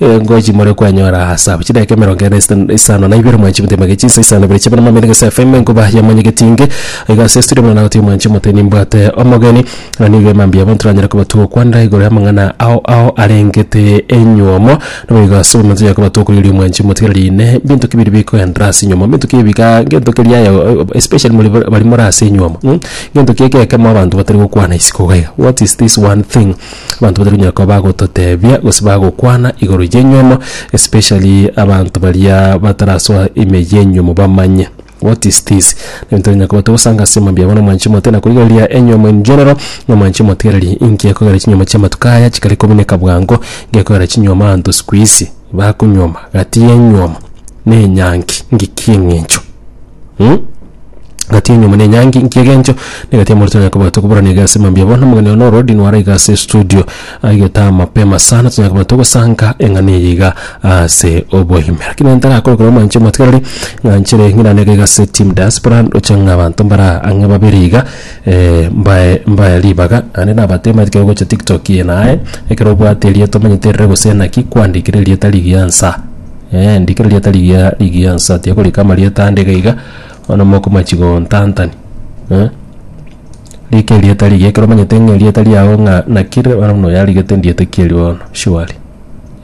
Engo echi more kwanyora ase abwo. Chidakika emerongo ene ase isano na ibere mwanchi motebie magechie nsa isano na ibere chiabana mambia negese FM enkuba ya mwanyegetie inge iga ase estudio buna nagotebi mwanchi mote nimbwate omogeni na nigo emambia abwo ntoranyare kobatwa okwanda igoro y'amang'ana ao ao arengete enyiomo nabo igo ase omonto tonyare kobatwa okoiroria mwanchi motigere rinde binto ki biri bikoenderera ase enyiomo binto ki ebiga gento keria aye oo especially more bare baria more ase enyiomo ng'o gento ki egekemo abanto batari gokwana isiko iga iga what is this one thing. Abanto batari konyara koba bagototebia gose bagokwana igoro y'enyuomo especially abanto baria batarasoa ime y'enyuomo bamanye what is this ebinto bikonyara koba togosanga ase mambia abo na omwanchi omote na korigereria enyuomo in general na omwanchi omotigereri inki ekogera chinyuomo chi'amatuko aya chikare komineka bwango gekogera chinyuomo abanto siku hizi bakonyuoma gati y'enyuomo na enyangi ng'iki eng'encho mh. egati ya enyiomo nenyangi inki egencho negati ya morito nyakoba tokoburana iga ase mambia bono omogeni one ororodi nware iga ase estudio aigete amapema sana tonya koba togosanka eng'ana eye iga ase oboime rakini nere tarakore korwa omwanche omotwereri ng'anchere ng'irane iga iga ase team diaspora ndoche ng'a abanto mbara ang'e babere iga mbae mbae ribaga naende nabateema ekero ogocha tiktok eye naye ekero obwate erieto omanyete erire gose naki kwandikire erieta rigiya nsa. Ee, ndikera rieta rigiya rigiya nsa tiakorika amarieta ande iga iga bono mokomachi gontantani eh? rika erieta rigiya ekero omanyete ng'a erieta riago ng'a naki rire bono buna oyarigete ndiete ki erio bono surely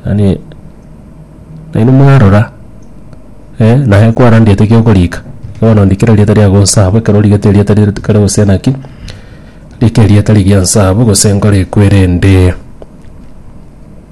yaani nainwe mwarora eh, naye kwara ndiete ki okorika bono ndikera erieta riago nsa abwo ekero origete erieta rire kare gose naki rika erieta rigiya nsa abwo gose nkore ekwerende.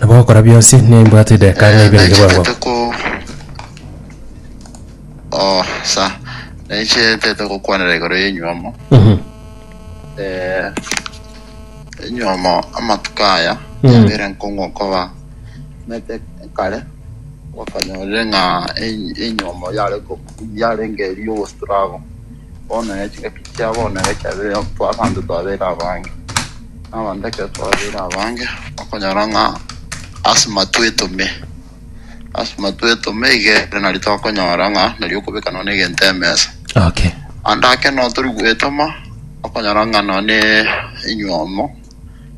Nabo ogokora bionsi nimbwate edeka ng'a ibere Naichete ngebwang'o. te ko oh sa naichete te gokwanera igoro y'enyuomo Mhm. eh enyuomo amatuko aya Mm. yabere nkong'u koba mete kare bakanyorire ng'a en- enyuomo yare ko yarenge eri ogostrago Bono ne chingaki chia bono egechabe twa abanto twabeire abange, na abanto ekero twabeire abange okonyora ng'a asima twetome, asima twetome iga ere nari tokonyora ng'a nari okobeka nonya egento emesa. Okay. Ande ake notori gwetoma okonyora ng'a nonya ne enywomo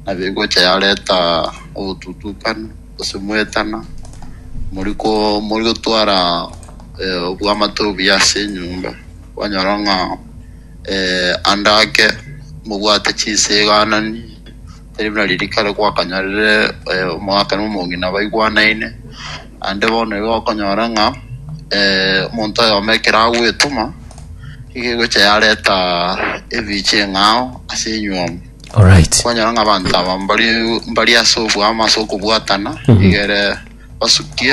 Nabe egocha yareta obotutukana, gose moetana, moriko morigotwara eh, obwamate obuya ase enyomba, kwanyora ng'a eh, ande ake mobwate chinse eganani, tari buna riria kare gwakanyorire eh, omogaka na omong'ina baigwanaine. Ande bono igo okonyora ng'a eh, omonto oyomo ekero agwetoma, igo egocha yareta ebiche eng'ao ase enyomba. Alright. kwanyora ng'a abanto aba mbari mbari ase obwamo ase okobwatana iga ere basukie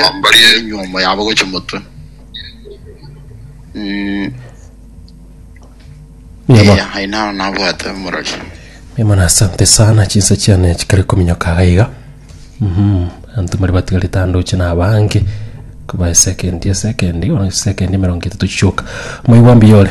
enywomo yabo gochia motwe Mm, Mia mono. eh, aye nao nabwate omorori Mia mono asante sana chinsa chiane chikare kominyoka aga iga. Mhm. Antu mari batigarete ande oche na abange. Kuba esekendi esekendi, ona esekendi emerongo etatu chichoka. Moigwa mbiyore.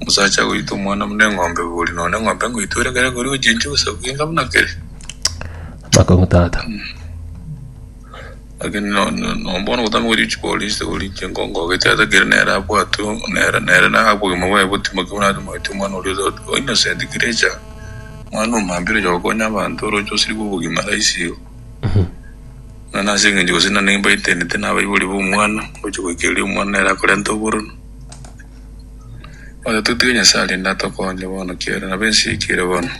Omosacha agoita omwana buna eng'ombe bori nonya eng'ombe ngoito ere kere koria ochinche gose kogenga buna kere. Amakong'u tata. Lakini no- no- no bono gotama gochia chipolice goria inche nkongogete ata kere nere abwatwe nere nere na obogima bwaye botimoke buna ase moeti omwana oria ota- o innocent creature. Omwana omambia oroche gokonya abanto oroche osirigwe obogima rahisi igo. Nonye nase eng'encho gose nane mbaetenete nabaibori ba omwana, ngochia goikereria omwana nere akorenta oboronu. Oyo totige Nyasaye rende atokonye bono kiagera nabo ense yaikire bono.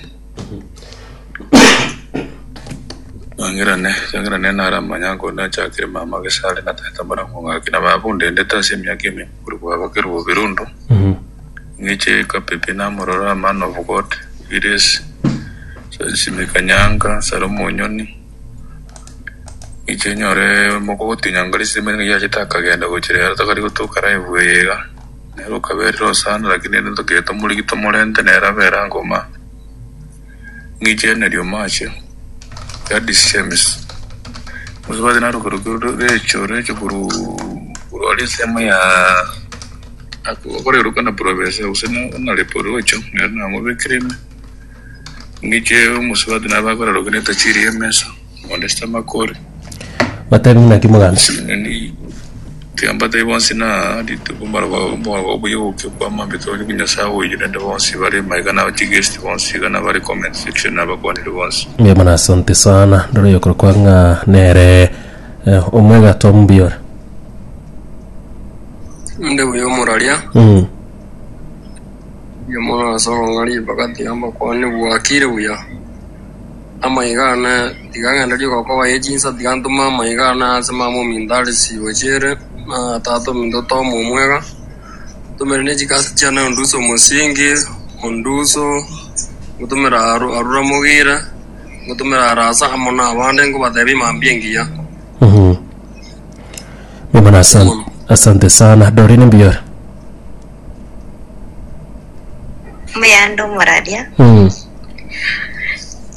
Mangerane, Changerane nare amanye ang'o onde achakire mama gese are na tata mbare ng'o ng'aki na baba ondendete ase emiaka eme korwa bwabakire bobere ondo ng'iche kapepe namororo a man of God, Gillies, Charles Mikanyanga, Salomo Onyoni, Inche nyore omoko ogotinya ngori ase emeremo eria yachete akagenda gochia rero tokari gotoka live eye iga. Nere okaberire osana lakini rende tokegete omorigi tomorente nere abere ango ma. Ng'iche Henry Omache, Gladys Shemes. Buna ebati naroke roke recho recho korwa korwa aria ensemo ya akoreroka na province gose na na reporocho nere namobekire ime. Inche omosubati nabe akorarokia ne etachiri y'emesa, onde sitamakori. Batebie, Naki mogancha? Yaani tiamba tai bonsi na rituko mbaro ba mbaro ba buya uke kwa mambe tore ku nyasaye uyu nende bonsi bare maiga na chi guest bonsi iga na bare comment section na bakwanire bonsi Mbuya mono asante sana ndore yokoro kwa ng'a nere eh, omwega to mbiore Inde buya omoraria. mm. Inwe more ase okong'a ribaga tiga mbakwane bwakire buya. Amaiga aane tiga ng'ende riko kobaye chinsa, tiga ntome amaiga aane ase mama ominto are chibo chiere, na tata ominto Tom omwega. Ntomere ne chigasi chiane onduse omosingi, onduso, ngotomere Aru- Arura Mogire, ngotomere Arasa amo na abande nkobatebia mambia engiya. Mhm. Mimana asan- asante sana dorine mbiyore Muyande omoraria,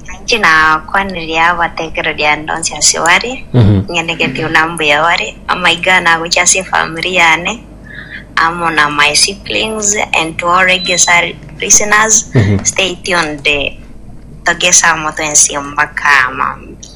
nainche nakwanirie abatekereria aende onsi ase bare, ng'ende gati buna mbuya bare, amaiga aya nagochie ase efamiri yane, amo na my siblings and to all Reggae listeners, stay tuned, togese amo twensi mpaka mambia.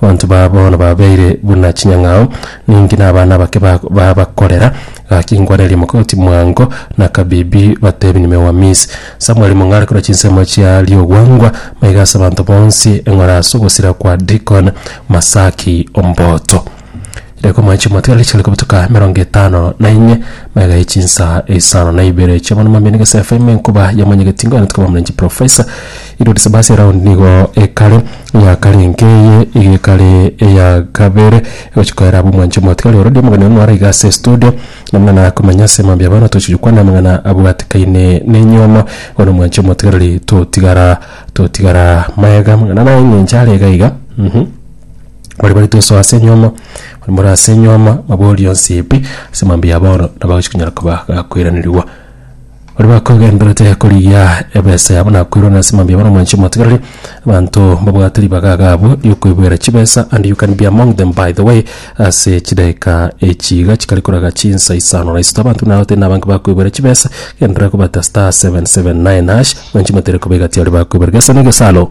Abanto baa bono babeire buna chinyang'ao, ninki nabana abake ba- babakorera? Gaki inkwanerie mogoti mwango, na kabibi batebi nimeuamis. Samweli mong'are korwa chinsemo chia riogwangwa, maiga ase abanto bonsi eng'ora ase ogosira kwa Dikon, Masaki, Omboto. Reko mwanche omotwe riche rikobutuka emerongo etano na enye, mega ye chinsa isano na ibere chia bono mambia nigese FM enkuba ya monyegeti ngoyana tukaba mrenchi professor Irudi Sebasi round nigo ekare ya kare enke eye iga ekare ya kabere egochika era abu mwanche omotwe ari orodi omogeni ono ara igase studio namuna na komanya se mambia abana tochi kwana amangana abwatikaine ne nyomo bono mwanche omotwe riri totigara totigara mega mangana naye ngencha are iga iga mm -hmm. Baria bare tosoa ase enyuoma, baria bare ase enyuoma babori onsi ebi ase mambia ya bono, nabo agochi konyara koba gakoiranerigwa. Baria bakogenderete korigia ebesa yabo na koirana ase mambia ya bono omoanchie omotigareri, abanto babwate ribaga iga abwo riokoiboera chibesa and you can be among them by the way ase chidageka echi iga chikare koraga chinsa isano na isato. Abanto buna batari nabange bakoiboera chibesa, genderera kobata *779#, omoanchie omotigareri koba egati yaye bakoiboera gesa na egesaro.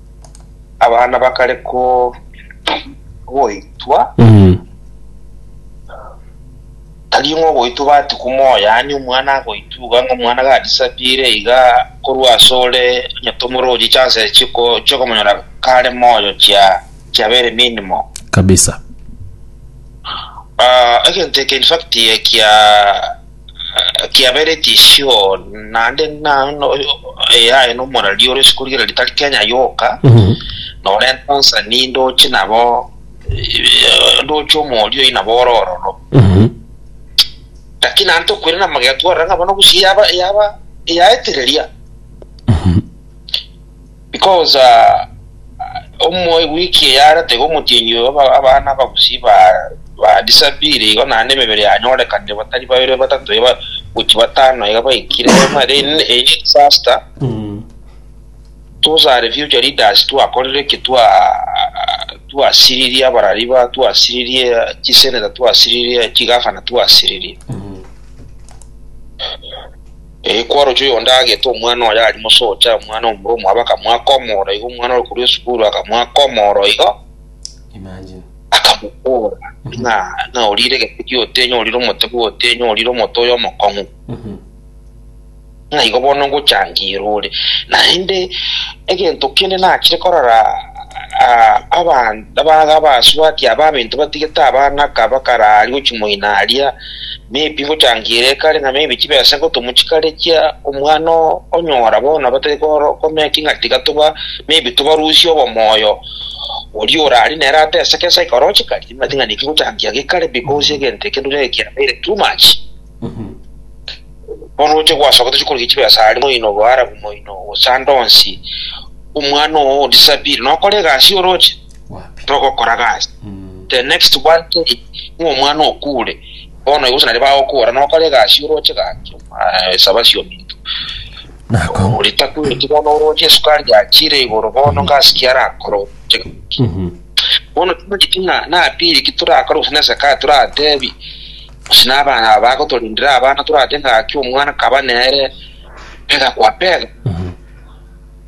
Abana bakare ko- goitwa, Mm. tari ng'a ogoitwa obati komoyo, yaani omwana agoitwa iga ng'a omwana gadisappeare iga korwa ase ore onye tomororie chances chiko- chikomonyora kare moyo chia- chia very minimal. kabisa Ah, egento eke infact ekia Kiabereti isiko naende na eyaye na omorari ore isiko riria ritari Kenya yoka, norenta ensani ndoche nabo ndoche omori oyio nabo ore ororo. Lakini naende tokoirana amagena twarora ng'a bono bosio yaba yaba yaetereria. Because omoe week eyare tiga omotienyi oyo obe abana abagusii ba ba disappear igo naende emebere yanyorekanire batari babere batato iga gochia batano iga baikire bono then eye disaster tosare future leaders twakorire ki twa twasiririe abarari ba twasiririe chisenator twasiririe chigavana twasiririe Ee, kwaroche oyo onde agete omwana oye aria mosocha, omwana omorwa omwabo akamoaka omoro igo, omwana ore korwa esukuru akamoaka omoro igo, akamobora ng'a, ng'a orire egete gi'otenyo, orire omote bw'otenyo, orire omote oyo omokong'u, ng'a igo bono ngochangeirwe ore. Naende egento kende nachire korora ah, aban- aba- abasubati aba abaminto batigete abana ka bakararia gochia moino aria, Nebi gotangira ekare na maybe chibesa ngotomu chikare chia omwana oo onyora bono batari komeki ng'a tiga toba maybe tobarusie obomoyo oria orari nere ateseke ase ekero chikari. Timanyeti ng'a naki gotangia gekare because egento ekero nere kiabeire too much. Bono oche gwasoka tochi korigia chibesa aria moino boharabu moino gose ande onsi omwana oo o disappear nokora egasi oroche. togokora gasi. The next one thing ng'a omwana okure bono igo gose naria bagokora nokore egasi oroche gaki saba siominto oria takweti bono oroche esukari yachire igoro bono gasi ki arakore oroche gaki. Bono tibageti ng'a napiri ki torakore gose nase kaye toratebi gose na abana aba bagotorindera abana torate ng'aki omwana kaba nere pega kwa pega.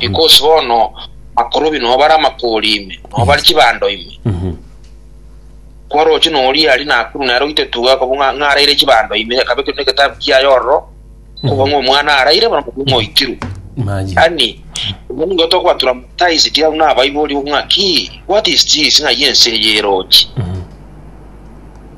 Because bono abakorobi nobo bare amakoori ime, nobo bare chibando ime. Kwaroche noria aria Nakuru nere oitetuga akabua ng'a- ng'a araire chibando ime, akabe kende egetabu kiaye ororo, kobua ng'a omwana araire bono kobua ng'a oitirwe. Maye. Yaani, obwo nigo tokoba traumatized au nabaibori ng'a ki, what is this, ng'ai ense eye erochi?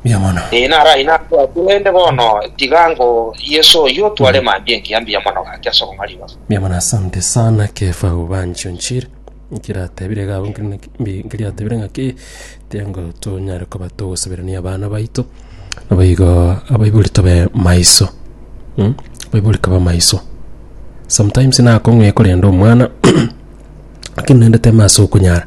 mbuya mono. Ee, naro ayio nakorwa aa, korende bono tiga ango Yeso oyio otware mambia engiya mbuya mono gaki ase obong'aini obo. Mbuya mono. Asante sana Kefa Ubanjo Nchiri, nkiratebire iga abwo nkeri naki mbi- nkeriatebire ng'aki tengo tonyare koba togosaberania abana baito, naboigo abaibori tobe maiso mm, abaibori koba maiso. Sometimes nakong'u ekorenda omwana lakini naende teme ase okonyara.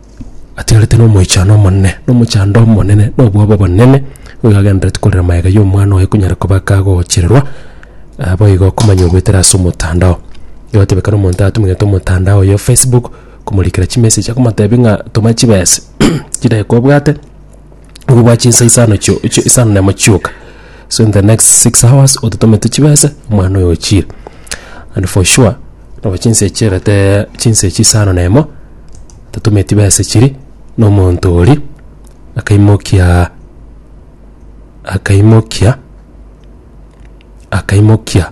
atigarete nomoichano omonene, na omochando omonene, na obwabo obonene, nigo agenderereti korera magega ya omwana oye konyara koba kagochererwa, ah boigo okomanya ogoetera ase omotandao. Egoteba ekero omonto atumegete omotandao oye o facebook, komorikera chimessage, akomotebia ng'a toma chibese chidaki kobwate. ngogwa chinsa isano chio- chio- isano na emo chioka so in the next six hours ototomete chibesa omwana oyo ochire and for sure nabo chinsa echi chiagete chinsa echi isano na emo totometi besa chiri na omonto oria akaimokia akaimokia akaimokia.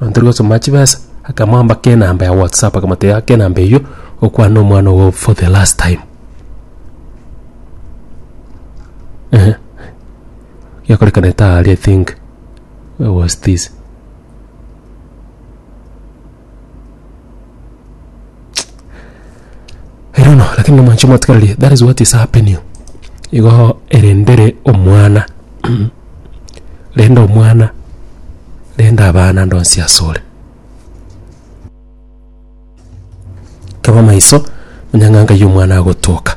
Antonia gosoma chibesa, akamoamba kenamba ya WhatsApp akamotebia ake enamba eyio okwana omwana ogo for the last time. Ehe. Yakorekanete aria I think it was this. Erono lakini nomonche mwatigareria that is what is happening igooo erendere omwana renda omwana renda abana ande onsi asore. Taba maiso onye ng'a nkai omwana agotoka.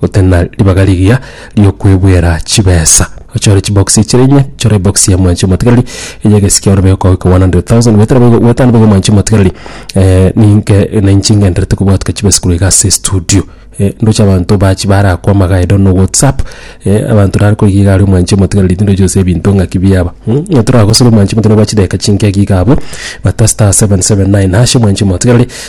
gotari na ribaga rigiya riokwebwera chibesa. Ochore chibox chire inye, chora ebox ya mwanchi omotigareri eye egesike ore beko goika 100,000 bwetera boigo bwetano boigo mwanchi omotigareri eh ninke na inche ngenderete kobwatuka chibesa korwa iga ase estudio eh ndoche abanto bachi barakwama iga idono whatsapp eh abanto nare koigwa iga aria omwanchi omotigareri tindochi gose ebinto ng'aki biaba mh onye toragosore omwanchi omotigareri gwa chidakika chinke iga abwo bata *779# omwanchi omotigareri.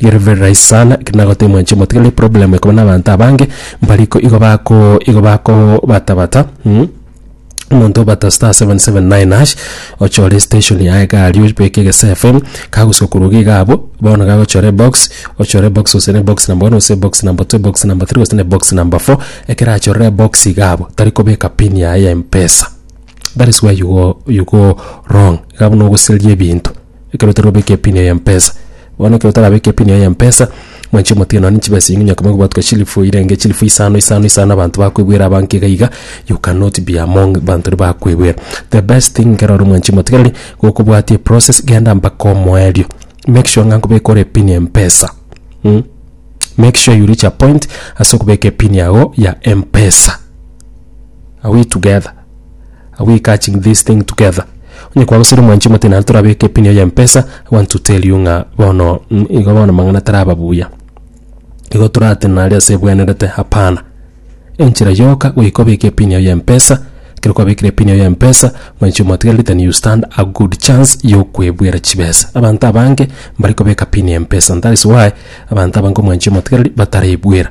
Gere very right sana ekero nagotebia mwanche omotigani problem ekoba na abanto abange mbari ko igo bako igo bako bata bata mm, omonto obata star 779 hash ochore station ya egari obeke egese FM kagosuka korwa iga igabo bono gagochora ebox ochore ebox gose ne box number one gose ebox number two ebox number three gose ne box number four ekero achorire ebox iga abo tari kobeka pin yaye ya mpesa that is where you go, you go wrong iga buna ogoseria ebinto. ekero otari gobeka epini eye yempesa. Bono ekero otarabeka epini eye yempesa, mwanche omotige nonye chibesa chinyinge onye koba gwatwa chilifu irenge chilifu isano isano isano abanto bakoebwera abange iga iga you cannot be among abanto baria bakoebwera. The best thing ekero ore omwanchi omotigereri gokobwatia eprocess genda mpaka omoerio. Make sure ng'a nkobeka ore epini yempesa mh make sure you reach a point ase okobeka epini yago ya mpesa. Are we together? Are we catching this thing together? Onye kwagosera omwanchi omote naende torabeke epini yaye mpesa, I want to tell you ng'a bono mm, igo bono mang'ana taraba buya. Igo torate nare ase ebwenerete hapana. Enchera yoka goika obeke epini yaye mpesa, ekero kwabekire epini yaye mpesa, mwanchi omotigereri then you stand a good chance yokwebwera chibesa. Abanto abange mbare kobeka pini ya mpesa and that is why abanto abange omwanchi omotigereri batarebwera.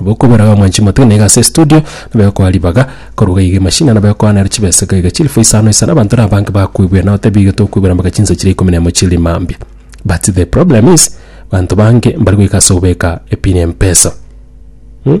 Bokobera iga mwanchi motwe na iga ase estudio nabo egokoa ribaga koruga iga emashini nabo egokoa nero chibesa iga iga chilifu isano isano abanto na abange bakoigwera nabo tebi iga tokoigwera mpaka chinsa chire ikomi na emo chiri mambia but the problem is banto bange mbari goika ase obeka epin ya mpesa hmm?